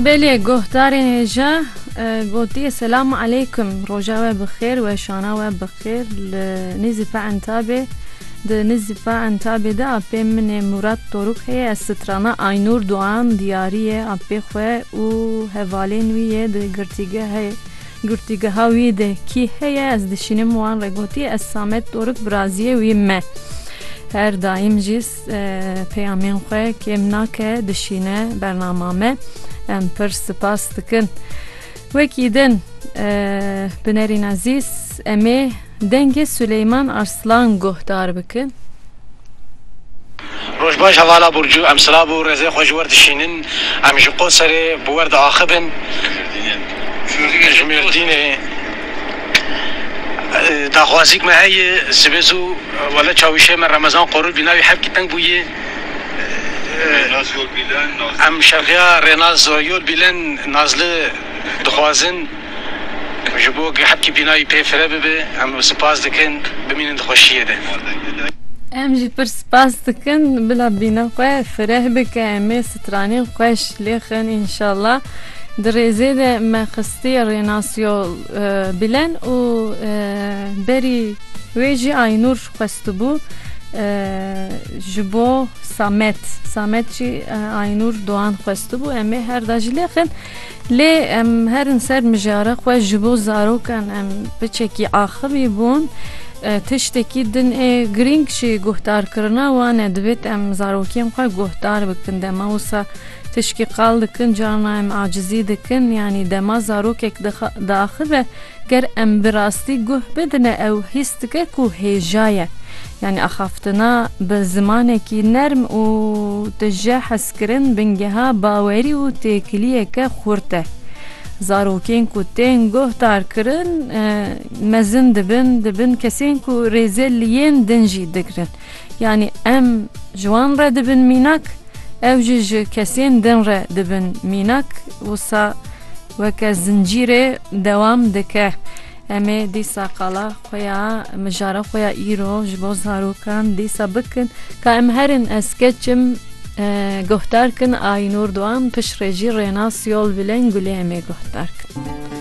Belê guhdarên hêja gotiye selam aleykum roja we bi xêr we şana we bi xêr li nîzî pa entabê di nîzî pa entabê de apê min ê Murat Doruk heye ez strana Aynûr Duan diyarî ye apê xwe û hevalên wî yê di girtîgehê girtîgeha wî de kî heye ez dişînim wan re gotiye ez Samet Doruk biraziyê wî me her daîm jî Peyamên xwe kêm nake dişîne bernama me. Em pir sipas dikin. Wekî din bi nerîn ezîz em ê dengê Suleyman Arslan guhdar bikin. Roj baş hevala Burcu. Em silav û rêzê xwe ji wir dişînin. Em ji Qoserê bi wir diaxivin ji Mêrdînê. Daxwazîk me heye sibê zû wele çawişê me Remezan Qorû bîna wî hevkî teng bûye. Em şexiya Rênaz Yol Bîlen Nazli dixwazin ji bo ke hevkî bîna wî pê fire bibe. Em sipas dikin. Bimînin di xweşiyê de. Em jî pir spas dikin bila bîna xwe fireh bike. Em ê Stranên xweş lê xin înşala. Di rêzê de me xistiye rê Nasyo Bilen û berî wê jî Aynûr xwestibû ji bo Samet. Samet jî Aynûr Doğan xwestibû. Em ê her da jî lê xin. Lê em herin ser mijara xwe ji bo zarokan em biçekî axivî bûn. Tiştekî din ê girîng jî guhdarkirina wan e. Divêt em zarokên xwe guhdar bikin. Dema wisa tişkî qal dikin carna em acizî dikin. Yanî dema zarokek diaxive Ger em bi rastî guh bidine ew hîs dike ku hêja ye. Yanî axaftina bi zimanekî nerm û tije hezkirin bingeha bawerî û têkiliyeke xurt e. Zarokên ku tên guhdarkirin mezin dibin, dibin kesên ku rêzê li yên din jî digirin. Yanî em ji wan re dibin mînak, ew jî ji kesên din re dibin mînak. Wisa Weke zincîrê dewam dike. Em ê dîsa qala xwe ya, mijara xwe ya îro ji bo zarokan dîsa bikin. Ka em herin ez keçim guhdar kin Aynur Doğan piştre jî Rênas Yolbilen gulê em ê guhdar kin.